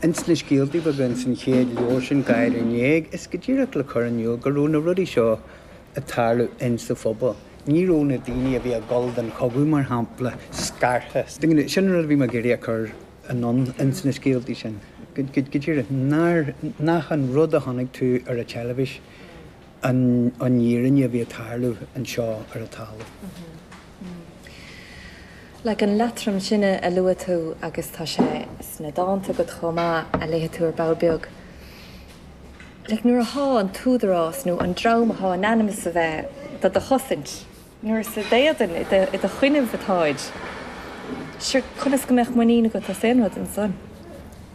Ins na scéaltaí beaga ins an chéad leabhar sin, Gáire in Éag, is go díreach le cur in iúl go raibh na rudaí seo ag tarlú ins an phobal. Ní raibh na daoine a bhí ag dul don chogadh, mar shampla, scartha. Sin an rud a bhí mé ag iarraidh a chur anonn ins na scéaltaí sin, go díreach nach an rud a chonaic tú ar an teilifís, an fhírinne a bhí ag tarlú anseo ar an talamh. Like an leatrom sin a luaigh tú agus tá sé sna dánta agat chomh maith a léigh tú ar ball beag. Like nuair athá an t-údarás nó an dream athá in ainm is a bheith do do chosaint, Nuair is i d'éadan, i do choinnibh atáid, sure, conas go mbeadh muinín agat as aon rud ansan?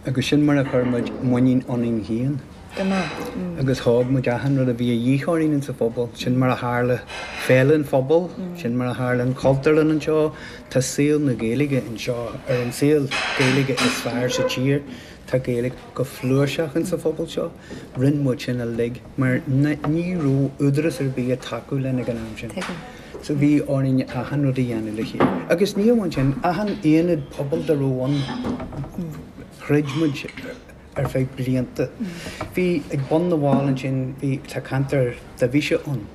Agus sin mar a chuir muid muinín ionainn féin. Go maith. Agus thóg muid achan rud a bhí a dhíth orainn insa phobal. Sin mar a tharla Féile an Phobail, sin mar a tharla an Chultúrlann anseo. Tá saol na Gaeilge anseo, ar an saol Gaeilge is fearr sa tír. Tá Gaeilge go flúirseach insa phobal seo. Rinn muid sin uilig mar ní raibh údarás ar bith ag tacú linn ag an am sin. Tuigim. So bhí orainn achan rud a dhéanamh le chéile. Agus ní amháin sin, achan aonad pobail dá raibh ann, throid muid ar feadh blianta. Bhí ag bun na bhFál ansin, bhí, tá ceantar Divis ann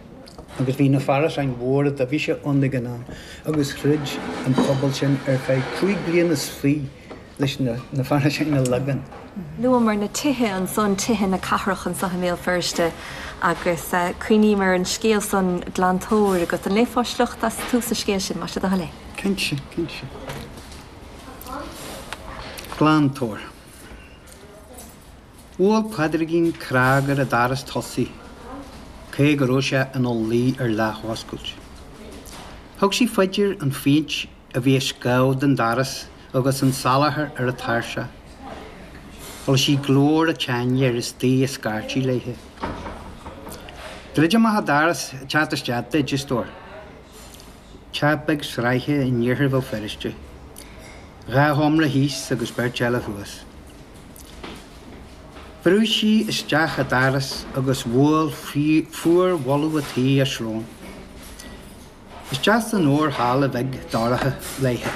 agus bhí na hárasáin mhóra Divis ann ag an am agus throid an pobal sin ar feadh cúig bliana 's fi. leis na hárasáin a leagan. Luamar na tithe ansan, tithe na cathrach anso i mBéal Feirste agus cuimhním ar an scéal san Glantóir agus an léifeá sliocht as tús an scéil sin, más é do thoil é? Cinnte, cinnte. Glantóir. Bhuail Pádraigín cnag ar an daras tosaigh cé go raibh sé ina luí ar leathoscailt. Thug sí faoi dear an phéint a bhí ag scamhadh den daras agus an salachar ar an tairseach. Chuala sí glór an tseanfhir istigh ag scairtigh léithe. Druid amach an daras ag teacht isteach duit, a stór. Teach beag sraithe in iarthar Bhéal Feirste. Dhá sheomra thíos agus beirt eile thuas. Bhrúigh sí isteach an daras agus bhuail fuarbholadh an tí a srón. Isteach san fhorhalla bheag dhorcha léithe.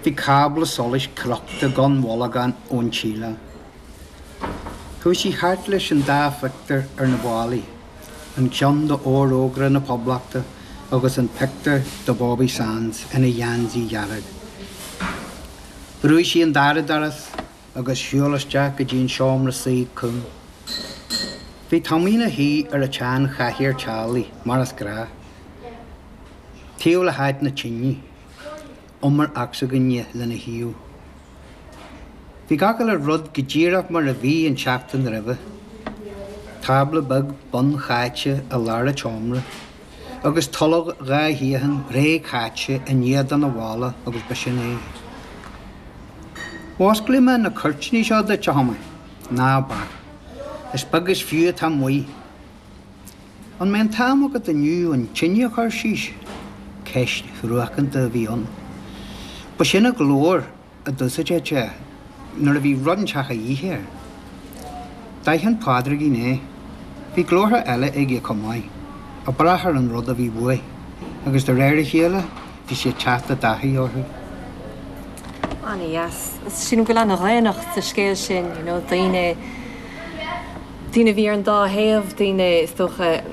Bhí cábla solais crochta gan bholgán ón tsíleáil. Chuaigh sí thart leis an dá phictiúr ar na ballaí, an ceann d'Fhorógra na Poblachta agus an pictiúr de Bhobby Sands ina gheansaí dhearg. Bhrúigh sí an dara doras. agus shiúl isteach go dtí an seomra suí cúng. Bhí Tommy ina shuí ar a tsean chathaoir teaghlaigh mar is gnáth, taobh le háit na tine, umar ocsaigine lena thaobh. Bhí gach uile rud go díreach mar a bhí an tseachtain roimhe, tábla beag bunchaite i lár a tseomra, agus tolg dhá shuíochan réchaite in éadan a bhalla agus b'shin é. Osclóidh mé na cuirtíní seo duit, a chomrádaí. Ná bac. Is beag is fiú atá amuigh. An mbeidh an t-am agat inniu an tine a chur síos? Ceist thruacánta a bhí ann. B'shin an glór. a d'úsáideadh sé nuair a bhí rud inteacht a dhíth air. D'aithin Pádraigín é. Bhí glórtha eile aige chomh maith, ag brath ar an rud a bhí uaidh, agus de réir a chéile bhí sé ag teacht i dtaithí orthu. Ana dheas. Sílim go bhfuil ana dhaonnacht sa scéal sin, you know, daoine, daoine a bhí ar an dá thaobh, daoine is dócha,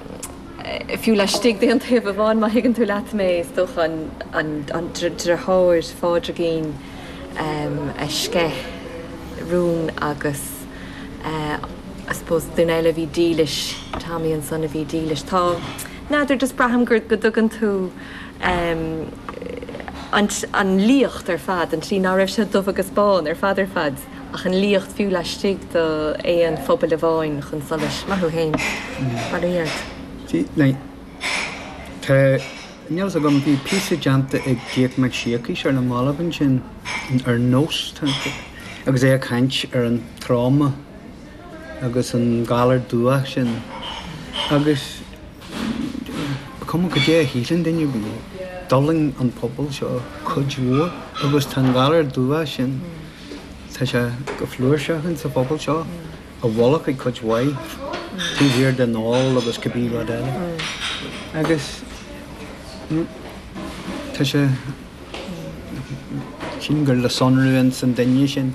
fiú laistigh d'aon taobh amháin, má thuigeann tú leat mé, is dócha, an driotháir Pádraigín a sceith rún agus I suppose duine eile a bhí dílis, Tommy ansan a bhí dílis. Tá, n'fheadar, just braithim go dtugann tú an liacht ar fad, an tslí ná raibh sé dubh agus bán ar fad ar fad. Ach an liacht fiú laistigh d'aon phobal amháin chun solais. Maith thú fhéin. Sea, now, tá a fhios agam, bhí píosa déanta ag Jake Mac Siacais ar na mallaibh ansin ar Nós, agus é ag caint ar an tráma agus an galar dubhach sin agus ba cuma cad é a shíleann duine faoi, d'fhulaing an pobal seo cuid mhór agus tá an galar dubhach sin. Tá sé go flúirseach ins a' phobal seo, i bhfolach ag cuid mhaith, taobh thiar den ól agus cibé rud eile. Agus tá sé, sílim gur le sonrú ins an duine sin.